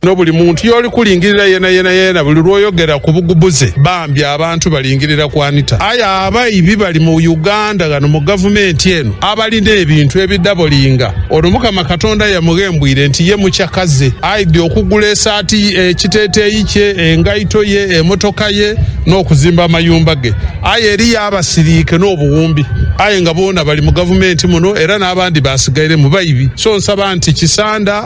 Kino buli muntu y'oli kulingirira yenayena yena buli lw'oyogera ku bugubuze. Bambi abantu balingirira ku Anita aye abaibi bali mu Uganda ghano mu gavumenti eno abalina ebintu ebidhabolinga ono Mukama Katonda yamughembwire nti ye mucakaze aidhi okugula esaati, ekiteteeyi kye, engaito ye, emotoka ye n'okuzimba amayumba ge aye eriyo abasiriike n'obuwumbi aye nga boona bali mu gavumenti muno era n'abandi basigairemu baibi so nsaba nti Kisanda.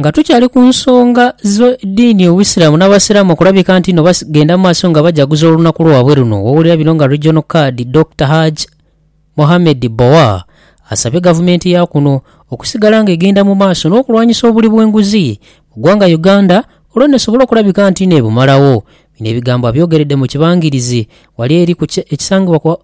Nga tukyali ku nsonga ze diini obusiramu n'abasiramu okulabika nti inho bagenda mu maaso nga bajaguza olunaku lwabwe luno, wowulira bino nga Regional Card Dokita Hajj Mohammed Boa asabye gavumenti ya kuno okusigala nga egenda mu maaso n'okulwanyisa obuli bwenguzi mu gwanga Uganda olwo nesobole okulabika nti inho ebumalawo. Bino ebigambo abyogeredde mu kibangirizi wali eri ku ekisangibwa ku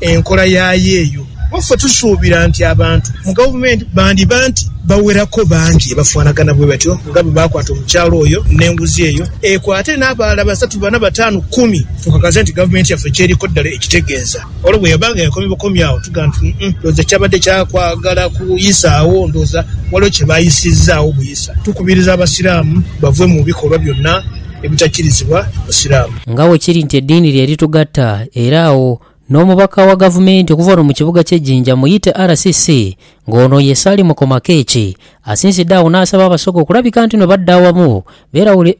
enkola yaayo eyo. Kuba ffe tusuubira nti abantu mu Gavumenti bandiba nti bawerako bangi abafaanagana bwe batyo nga bwe baakwata omukyala oyo n'enguzi eyo, ekwate n'abalala basatu, bana, bataanu, kumi, tukakaze nti Gavumenti yaffe ky'eriko ddala ekitegeeza. Olwo bwe yaba nga yakomye bukomyi awo, tugamba tuti, Uh-uh, ndowooza kyabadde kya kwagala kuyisaawo, ndowooza waliwo kye baayisizzaawo buyisa. Tukubiriza Abasiraamu bave mu bikolwa byonna. ebitakirizibwa Busiraamu. Nga bwe kiri nti eddiini lye litugatta, era agho n'omubaka wa Gavumenti okuva wano mu kibuga ky'e Jinja muyite RCC nga ono ye Salim Komakech asinzidde agho n'asaba Abasoga okulabika nti no badda awamu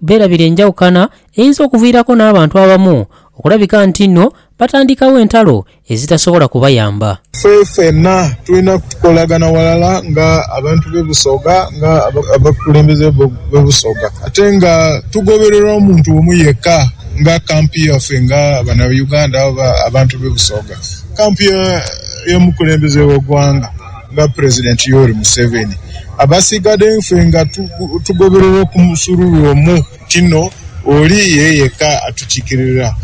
beerabire enjawukana eyinza okuviirako n'abantu abamu okulabika nti no batandikawo entalo ezitasobola kubayamba. Ffe fenha tulina kukolagana ghalala nga abantu be Busoga, nga abakulembeze be Busoga ate nga tugoberera omuntu omu yekka nga kampi yaffe nga bana Uganda oba abantu be Busoga, kampi y'omukulembeze we gwanga nga President Yoweri Museveni. Abasigadde ffe nga tugoberera omusululu omu. Tino oli ye yeka atukikirira.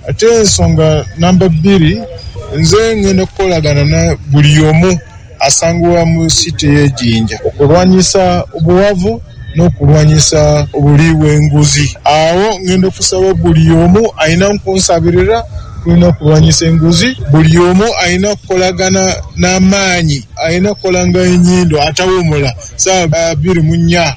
Ate ensonga namba bbiri, nze ngenda kukolagana ne buli omu asangibwa mu City y'e Jinja okulwanyisa obughavu n'okulwanyisa obuli bw'enguzi. Agho ngenda okusaba buli omu alina kunsabirira, tulina okulwanyisa enguzi. Buli omu alina kukolagana n'amaanyi, alina kukola nga enyindo atawumula, saawa biri mu nnya.